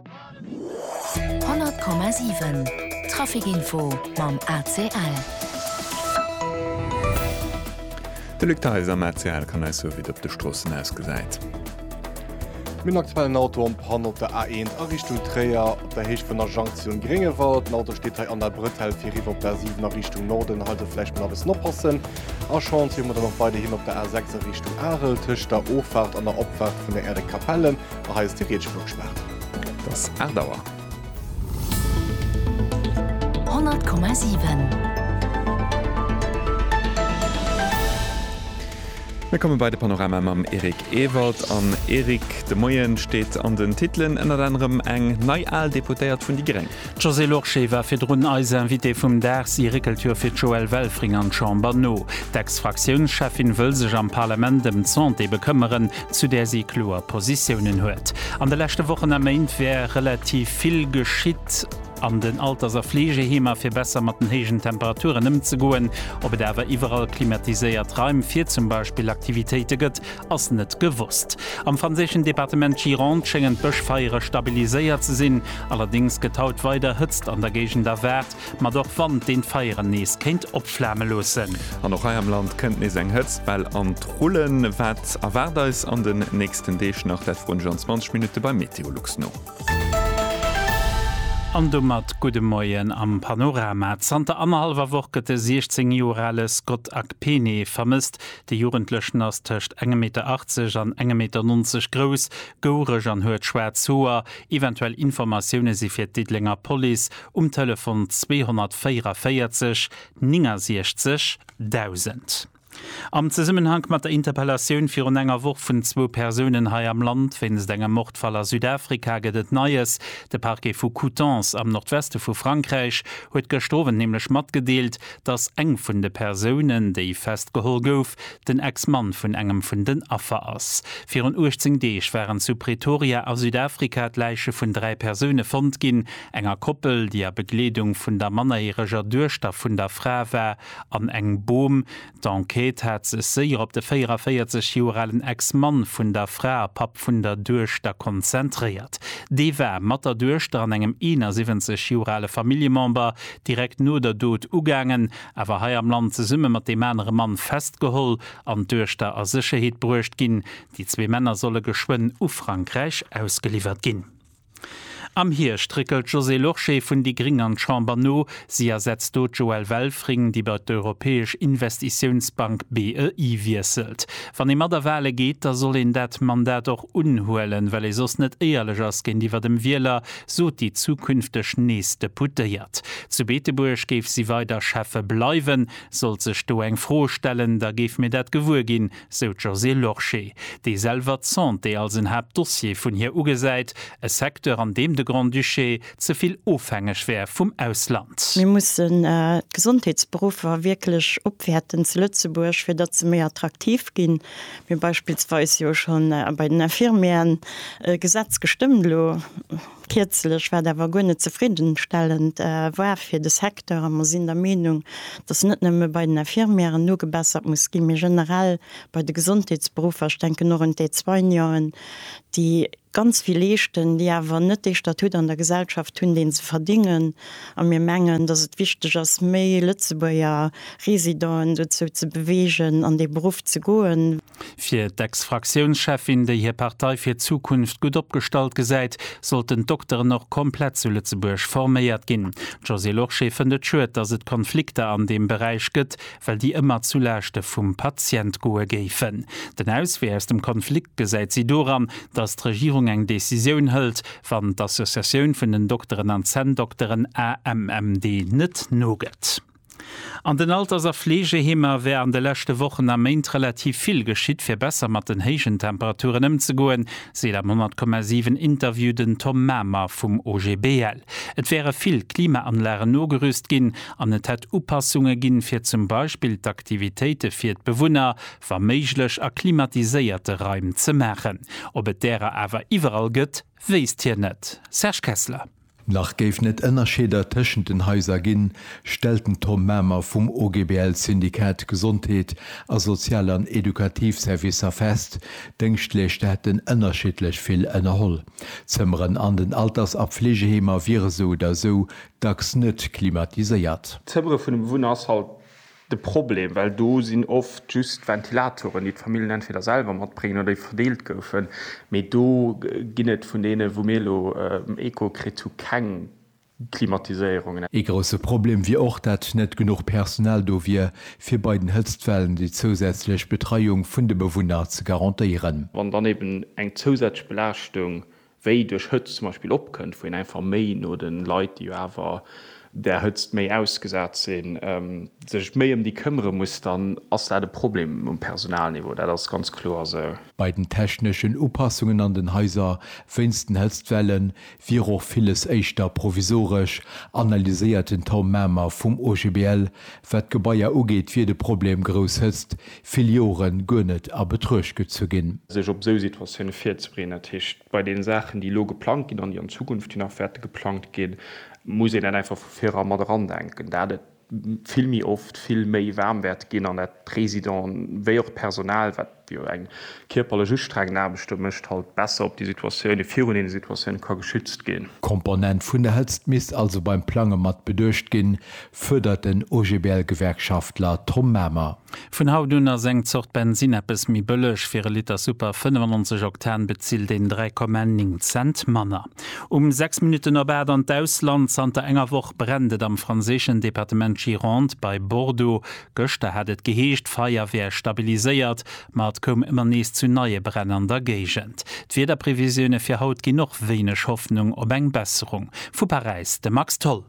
100,7 Traficinfo mam ACL. De Luc Theis am ACL kann eis soe wéi et op de Stroossen ausgesäit. Mir hunn aktuell en Auto am Panne op der A1 a Richtung Tréier, op der Héicht vun der Jonction Gréngewald. Den Auto steet hei an der Bretelle fir eriwwer op d'A7 a Richtung Norden. Hei also vläicht mol e bëssen oppassen. A Chantier hu mer dann och weiderhin op der A6 a Richtung Arel, tëscht der Offahrt an der Opfahrt vun der Erdekapelle. A hei ass déi Rietschflugspaart. Et ass 8 Auer. 100,7. Mir komme bei de Panorama mam Eric Ewald. An Eric, de Moie steet an den Titelen ënnert anerem eng nei al Deputéiert vun déi Gréng. D'Josée Lorsché war virdrun eis Invitée vum Dag. Si réckelt jo fir d'Joëlle Welfring an d'Chamber no. D'Ex-Fraktiounscheffin wëll sech am Parlament ëm d'Santé bekëmmeren. zu där si kloer Positiounen huet. An de leschte Wochen a Méint wär relativ vill geschitt an den Alters a Fleegeheemer, fir besser mat den héijen Temperaturen ëmzegoen. Ob et awer iwwerall klimatiséiert Raim fir zum Beispill Aktivitéite gëtt, ass net gewosst. Am franséischen Departement Gironde schéngen d'Bëschfeiere stabiliséiert ze sinn, allerdéngs gëtt haut weider Hëtzt an der Géigend erwaart. mat och Wand, deen d'Feieren nees kéint opflame loossen. An och hei am Land kënnt nees eng Hëtztwell an d'Rullen. Wat erwaart eis an den nächsten Deeg nach? Dat froen ech an 20 Minutte beim Meteolux no. An domat gudde Moien am Panorama. Zanter annerhallwer Woch gëtt de 16 Joer ale Scott Akpene vermësst. De Jugendlechen ass tëscht engem Meter 80 an engem Meter 90 grouss, goureg an huet schwaarz Hoer. Eventuell Informatioune si fir d'Diddelenger Police Um Telefon 244 69 1000. Am Zesummenhank mat der Interpellatioun virun enger Woch vun zwou Persounen hei am Land wéinst engem Mordfall a Südafrika gëtt et Neies. De Parquet vu Coutances am Nordweste vu Frankräich huet gëschter Owend nämlech matgedeelt, datt eng vun de Persounen, déi festgeholl gouf, den Ex-Mann vun engem vun den Affer ass. Virun 18 Deeg waren zu Pretoria a Südafrika d'Läiche vun dräi Persoune fonnt ginn. enger Koppel, déi a Begleedung vun der mannerjäreger Duechter vun der Fra war an eng Bom. D'Enquête hat sech séier op de 44 Joer alen Ex-Mann vun der Fra a Papp vun der Duechter konzentréiert. Dee war mat der Duechter an engem 71 Joer ale Familljemember direkt no der Dot ugaangen, awer hei am Land zesumme mat deem anere Mann festgeholl an d'Duechter a Sécherheet bruecht ginn. Déi zwee Männer solle geschwënn u Frankräich ausgeliwwert ginn. Am Hierscht réckelt d'Josée Lorsché vun déi Gring an d'Chamber no. Si ersetzt do d'Joëlle Welfring, déi bei d'Europäesch Investitiounsbank, BEI, wiesselt. Wann ee mat a Wahle geet, da soll een dat Mandat och unhuelen, well ee soss net éierlech ass géintiwwer dem Wieler, sot déi zukünfteg nees Deputéiert. Zu Beetebuerg géif si weider Schäffe bleiwen. Sollt sech do eng Fro stellen, da géife mir dat gewuer ginn, sou d'Josée Lorsché, déi selwer d'Santé als en Haaptdossier vun hir ugesäit, e Secteur an deem de Grand-Duché ze vill ofhängeg wär vum Ausland. Mir mussen d'Gesondheetsberuffer wierklech opwäerten zu Lëtzebuerg, fir datt se méi attraktiv ginn. Mir beispillsweis jo scho bei den Infirmieren e Gesetz gestëmmt elo. Kierzlech, wat awer guer net zefriddenstellend war fir de Secteur, a mer sinn der Meenung, datt net nëmme bei den Infirmièren nogebessert muss ginn, mee generell bei de Gesondheetsberuffer, ech denken och un d'Aide-soigneuen, déi ganz vill leeschten, déi awer net dee Statut an der Gesellschaft hunn, deen se verdingen, a mir mengen, datt et wichteg ass, méi Lëtzebuerger Residenten dozou ze beweegen, an dee Beruff ze goen. Fir d'Ex-Fraktiounscheffin, déi hir Partei fir d'Zukunft gutt opgestallt gesäit, sollten d'Dokteren och komplett zu Lëtzebuerg forméiert ginn. D'Josée Lorsché fënnt et schued, datt et Konflikter an deem Beräich gëtt, well déi ëmmer zu Laaschte vum Patient goe géifen. Den Auswee aus dem Konflikt gesäit si doran, datt d'Regierung eng Decisioun hëlt, wann d'Associatioun vun den Dokteren an Zänndokteren AMMD net nogëtt. An den Alters a Fleegeheemer wär an de leschte Wochen a Méint relativ vill geschitt, fir besser mat den héijen Temperaturen ëmzegoen, seet am 10,7 Interview den Tom Mamer vum OGBL. Et wäre vill Klimaanlagen nogerüst ginn an et hätt Upassunge ginn, fir zum Beispill d'Aktivitéite fir d'Bewunner, wa méiglech, a klimatiséierte Raim ze maachen. Ob et därer awer iwwerall gëtt, wéisst hien net. Serge Kessler. Nach géif net ënnerscheeder tëschent den Haiser ginn, stellt den Tom Mamer vum OGBL Syndikat Gesondheet a Sozial an Edukativ Servicer fest. D'Dëngschtleeschter hätten ënnerschiddlech vill ënnerholl. D'Zëmmeren an den Alters a Fleegeheemer wiere sou oder sou dacks net klimatiséiert. D'Zëmmere vun de Bewunner ass halt de Problem, well do sinn oft just Ventilatoren, déi d'Famillen entweder selwer matbréngen oder déi verdeelt goufen, mee do ginn et vun deene wou mir elo Echo kritt hu keng Klimatiséierung. Ee grousse Problem wier och, dat net genuch Personal do wier, fir bei den Hëtztwellen déi zousätzlech Betreiung vun de Bewunner ze garantéieren. Wann dann eben eng zousätzlech Belaaschtung wéi duerch Hëtzt zum Beispill opkënnt, wou een einfach méi no de Leit, déi jo awer där Hëtzt méi ausgesat sinn, sech méi ëm déi këmmere muss, dann ass dat e Problem um Personalniveau. Dat ass ganz kloer esou. Bei den techneschen Upassungen an den Haiser wéinst den Hëtztwelle wier och villes éischter provisoresch, analyséiert den Tom Mamer vum OGBL, Wat d'Gebaier ugeet, wier de Problem grouss Hëtzt vill Jore guer net a Betruecht gezu ginn. Sech op esou Situatioune virzebereeden, dat heescht, bei deene Saachen, déi elo geplangt ginn an déi an Zukunft jo nach wäerte geplangt ginn, muss een dat einfach vu virdrun mat erandenken, dat et vill méi oft vill méi waarm wäert ginn an dat d'Residenten wéi och d'Personal, wat déi jo eng kierperlech ustrengend Aarbecht do mécht, halt besser op déi Situatioune virun deene Situatioune ka geschützt ginn. D'Komponent vun der Hëtzt misst also beim Plange mat beduecht ginn, fuerdert den OGBL-Gewerkschaftler Tom Mamer. Vun haut un ass eng Zort Bensinn eppes méi bëlleg. Fir e Liter Super 95 Oktan bezilt een 3,9 Cent manner. Um 6 Minutten op 8 an d'Ausland, Zanter enger Woch brennt et am franséischen Departement Gironde bei Bordeaux. Gëschter hat et geheescht, d'Feier wär stabiliséiert, ma et koum ëmmer nees zu neie Bränn an der Géigend. D'Wiederprevisioune fir haut ginn och wéineg Hoffnung op eng Besserung. Vu Paräis de Max Tholl.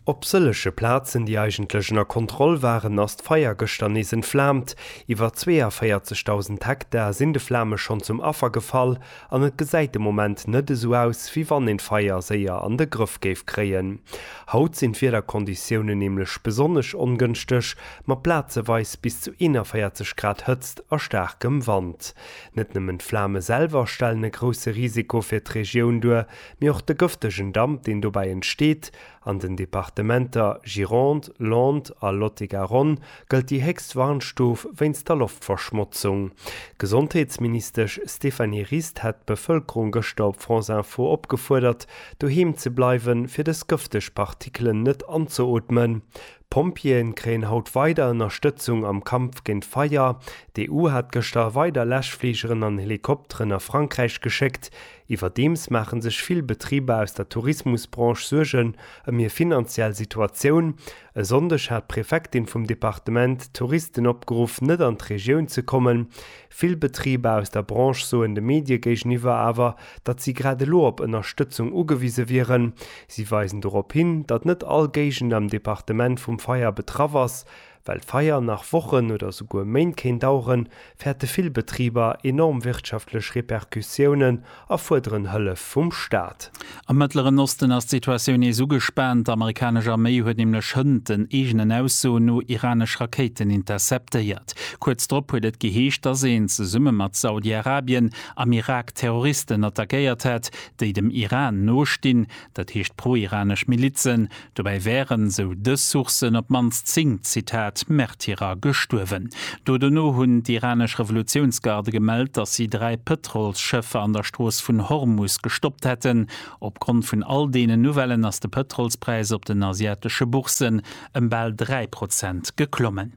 Op sëllege Plazen, déi eigentlech ënner Kontroll waren, ass d'Feier gëschter nees entflaamt. Iwwer 42.000 Hektar sinn de Flame schonn zum Affer gefall. An et gesäit de Moment net esou aus, wéi wann een d'Feier séier an de Grëff géif kréien. Haut sinn d'Wiederkonditiounen nämlech besonnesch ongënschteg, mat plazeweis bis zu 41 Grad Hëtzt a staarkem Wand. Net nëmmen d'Flame selwer stellen e grousse Risiko fir d'Regioun duer, mee och de gëftegen Damp, deen dobäi entsteet, An den Departementer Gironde, Landes a Lot-et-Garonne gëllt déi héchst Warnstuf wéinst der Loftverschmotzung. D'Gesondheetsministesch Stéphanie Rist hat d'Bevëlkerung gëschter op France Info opgefuerdert, doheem ze bleiwe fir dës gëfteg Partikelen net anzeootmen. D'Pompjeeë kréien haut weider Ënnerstëtzung am Kampf géint d'Feier. D'EU hat gëschter weider Läschfligeren an Helikopteren a Frankräich geschéckt. Iwwerdeems maache sech vill Betriber aus der Tourismusbranche Suergen ëm hir finanziell Situatioun. E Sonndeg hat d'Prefektin vum Departement d'Touristen opgeruff, net an d'Regioun ze kommen. Vill Betriber aus der Branche soen de Medie géigeniwwer awer, datt si grad elo op Ënnerstëtzung ugewise wieren. Si weisen dorop hin, datt net all Géigend am Departement vum Feier betraff ass. Well d'Feier nach Wochen oder souguer Méint kéint daueren, fäerte vill Betriber enorm wirtschaftlech Repercussiounen a fuerderen Hëllef vum Staat. Am Mëttleren Osten ass d'Situatioun nees ugespaant. Amerikanesch Arméi huet nämlech hënt den eegenen Aussoen no iranesch Rakéiten interceptéiert. Kuerz drop huet et geheescht, dass een, zesumme mat Saudi-Arabien, am Irak Terroristen attackéiert hätt, déi dem Iran nostinn, dat heescht pro-iranesch Milizen. Dobäi wären, sou dës Sourcen, op d'mannst 10, Zitat, Märtyrer gestuerwen. Do dono hunn d'iranesch Revolutiounsgarde gemellt, datt si dräi Pëtrolsschëffer an der Strooss vun Hormus gestoppt hätten. Opgrond vun all deenen Nouvellen ass de Pëtrolspräis op den asiatesche Bourssen ëm bal dräi Prozent geklommen.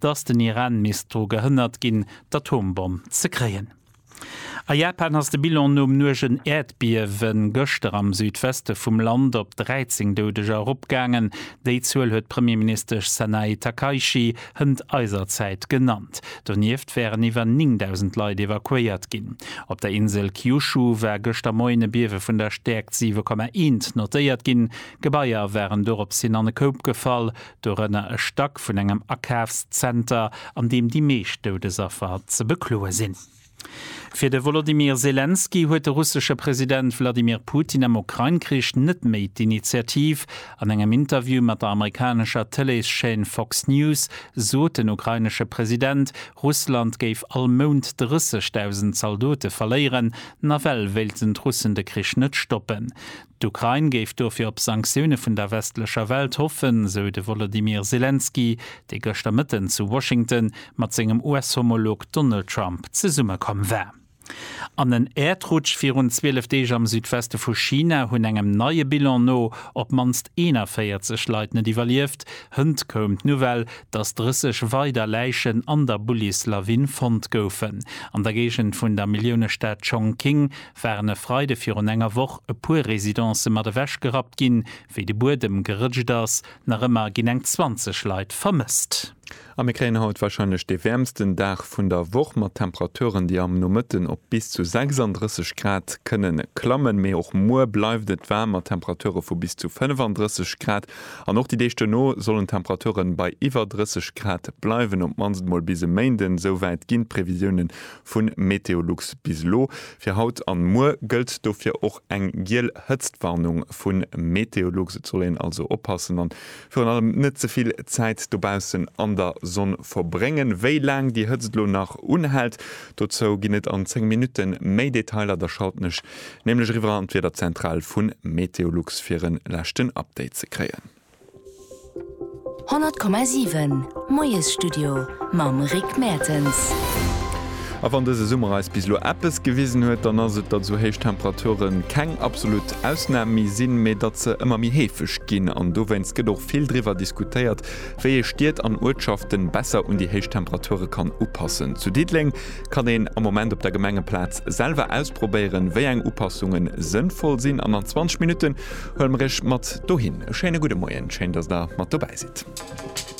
datt den Iran misst dru gehënnert ginn, d'Atombomm ze kréien. A Japan ass de Bilan nom nuegen Äerdbiewe gëschter am Südweste vum Land op 13 Doudeger eropgaangen. Déi Zuel huet d'Premierministesch Sanae Takaichi hënt eiser Zäit genannt. Donieft wären iwwer 9.000 Leit evakuéiert ginn. Op der Insel Kyushu war gëschter Moien e Biewe vun der Stäerkt 7,1 notéiert ginn. Gebaier waren doropshin an e Koup gefall. dorënner e Stack vun engem Akafszenter, an deem déi meescht Doudesaffer ze bekloe sinn. Fir de Wolodymyr Selenskyj huet de russesche President Wladimir Putin am Ukrain-Krich net méi d'Initiativ. An engem Interview mat der amerikanescher Tëleeschaîne Fox News sot den ukrainesche President, Russland géif all Mount 30.000 Zaldote verléieren. Nawell wéilten d'Russen de Krich net stoppen. D'Ukrain géif dofir op Sanktioune vun der westlecher Welt hoffen, sou de Wolodymyr Selenskyj, dee gëschter Mëtten zu Washington mat sengem US-Homolog Donald Trump zesummekomm war. An en Äerdrutsch virun 12 Deeg am Südweste vu China hunn engem neie Bilan no op d'mannst 41 Leit net iwwerlieft. Hënt koum d'Nouvelle, datt 30 weider Läichen an der Bullis-Lawin fonnt goufen. An der Géigend vun der Milliounestad Chongqing waren e Freide virun enger Woch e puer Residencë mat ewech gerappt ginn, wéi de Buedem gerëtscht ass. Nach ëmmer ginn eng 20 Leit vermësst. A mir kréien haut warscheinlech dee wäermsten Dag vun der Woch, mat Temperaturen, déi am Nomëtten op bis zu 36 Grad kënne klammen. Mee och muer bleift et waarm, mat Temperature vu bis zu 35 Grad. An och déi Deeg duerno sollen d'Temperature bei iwwer 30 Grad bleiwen, op d'mannst emol bis e Méinden. Esou wäit ginn d'Previsioune Vu Meteolux bis elo, fir haut an muer gëllt dofir och eng giel Hëtztwarnung vu Meteolux. Et soll een also oppassen an virun allem net ze vill Zäit dobaussen an der Sonn verbréngen. Wéi laang déi Hëtzt elo nach unhält, dozou ginn et an 10 Minutten méi Detailer. Da schalten ech nämlech eriwwer an d'Wiederzentral vu Meteolux fir en leschten Update ze kréien. 100,7 Moiesstudio mam Rick Mertens. A wann dëse Summer eis bis elo eppes gewisen huet, dann ass et, datt esou héich Temperature keng absolut Ausnam méi sinn, mee datt se ëmmer méi heefeg ginn. An dowéinst gëtt och vill driwwer diskutéiert, wéi ee Stied an Uertschaften besser un déi héich Temperature kann upassen. Zu Diddeleng kann een am Moment op der Gemengeplaz selwer ausprobéieren, wéi eng Upassungen sënnvoll sinn an an 20 Minutten Huel mer iech mat dohin. E schéine gudde Moien, schéin dass der mat dobäi sidd.